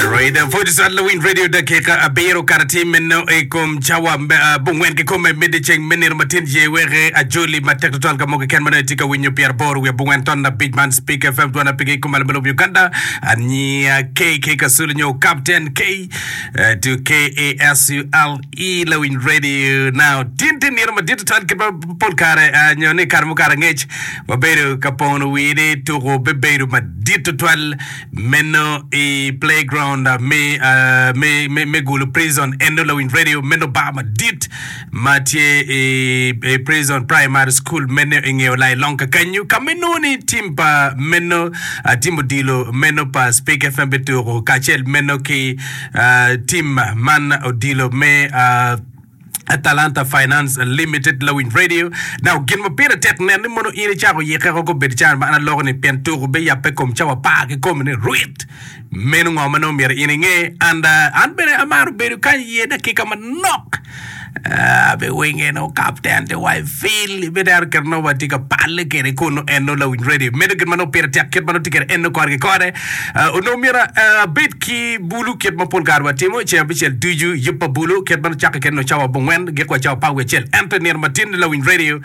Rweda Photo Cite Lawiny Radio Dakika abiro kato atir meno i kom cawa bungwen kikome mede ceng me nino matin jee weke ajoli matek tutwal ka mogo keken ma nongo itye ka winyo pyera aboro wiye bungwen ton abic man Speak FM dwan apigi i kom alamo lobo Uganda aniya KK Kasule nyo Captain K eh, to KASULE Lawiny Radio now tin tye nino madit tutwal kit ma pol kare ah, nyo ni kare mukato angec wabedo ka pono wini tuko bebedo madit tutwal Meno i playground me, uh, me, me, me gulu prison endo lawiny radio meno bar madit ma tye i, i prison primary school meno i ngeo lai long kakenyu ka ma inongo ni tim pa meno uh, tim odilo meno pa speak fm bituko kacel meno ki uh, tim man odilo me uh, Atalanta Finance Limited lawiny radio now gin ma pire tek nen ni mono in icako yike ko bed can ma an aloko ni pien tuk obe yape kom cawa apar ki komi ni rwit meno ngo ma nongo myero in inge and uh, an bene amaro bedo kany iye dakika manok uh, abe wenge no kapten te wai fil ibe dero kit nongo watye ka palle kede kunu en no lawiny radio medo gin ma nongo pire tek kit ma nongo tye kede en no kore ki kore Onongo myero abed ki bulu kit ma pol kare watimo, ceng abicel ducu yub pa bulu, kit ma nucakke kwede nongo cawa abongwen, giko wa cawa apar wiye acel. Ento i nino matin ni lawiny redio,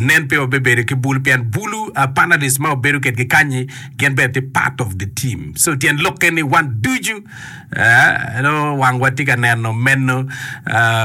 nen pe wabibedo ki bulu pien bulu, panelists ma wabedo kwedgi kany-nyi gin bene tye part of the team. So tyen lokke ni wan ducu Nongo wangwa tye ka neno meno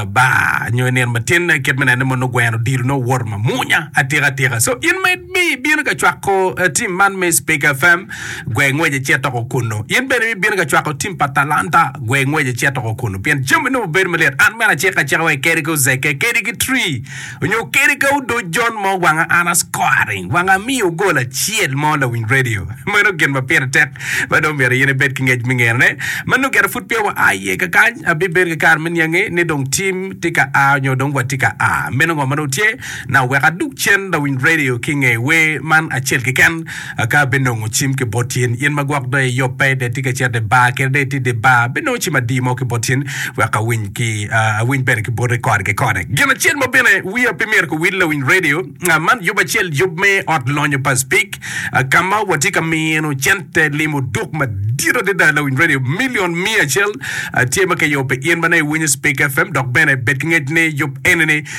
bar nyo i nino matin kit me nene mono gweno odilo nongo owoto mamunya atika tika so in ma mi bino ka cwako tim man me speak fm gwe ngwec icit toko kunu in bene mi bino ka cwako tim pa talanta gwe ngwec icit toko kunu pien jami nongo bedo malit an mene acika acika wa kedi ki ozeke kedi ki tree Onyo kadi ka odoc jon mo wanga an ascoring wanga amiyo gol acel mo lawiny radio meno gin ma pire tek ma dong myero in ibed ki ngec me ngene ne ma nongo gire pud peya wa a iye kakany abibedo ki kare me niangi ni dong tim tye ka a onyo dong watye ka a meno ngo ma dong tye na oweko adug cen lawiny radio ki nge wer man acel keken Aka abinongo cim ki bot in, in ma gwok doye yop pe, dong itye ka cito i bar kadi dong itye i dye bar, abinongo cim adi mo ki bot in, wek awiny ki, awiny bene ki boti kore ki kore. Gin acel mo bene wiya pe myero kiwil lawiny redio man, yub acel yub me ot lonyo pa Speke, ka ma watye ka mino cente limo duk madit adada. Lawiny redio milion miya acel tye ma kiyubo pi in ma nongo iwinyo Speke FM, dok bene bed ki ngec ni yub eni-ni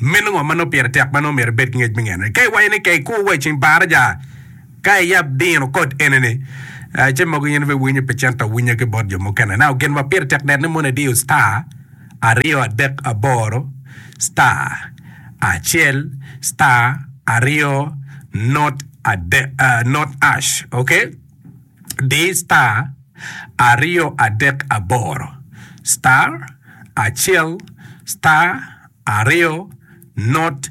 Meno ngo ma nongo pire tek ma nongo myero ibed ki ngec me ngene? Ka iwaco ni ka ikur wa i ceng baraja ka iyab dino kod enini, ce mogo in pe iwinyo pi cente awinya ki bot jo mukene. Now gin ma pire tek net ni mono idiyo star aryo adek aboro star acel star aryo not adek not ash okay. di star aryo adek aboro star acel star aryo not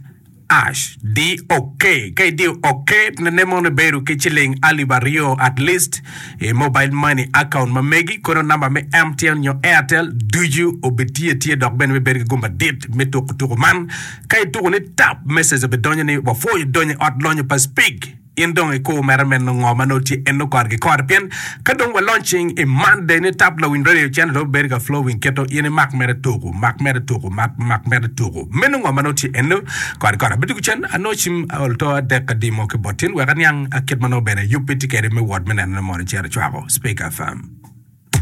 ash di ok ka idiyo ok ne mono ibedo ki ciling alip aryo at least i mobile money account ma megi kono namba me MTN nyo Airtel ducu obi tye atye dok bene me bedo ki gum madit me tuku tuku man ka ituku ni tap message obi donyo ni wapwoyo donyo i ot lonyo pa Spig In dong ikur mere meno ngo ma nongo tye eno kore ki kore pien ka dong walony cing i Monday ni tap lawiny radio channel dong bedo ka flowing keto in imak mere tuku mak mere tuku mak mak mere tuku meno ngo ma nongo tye eno kore ki kore abeddo ki cen anongo cim aol to adek adimo ki bot tin wek aniang kit ma nongo bene yubbi tye kede me wot me nenone mono cito cwako Speaker FM.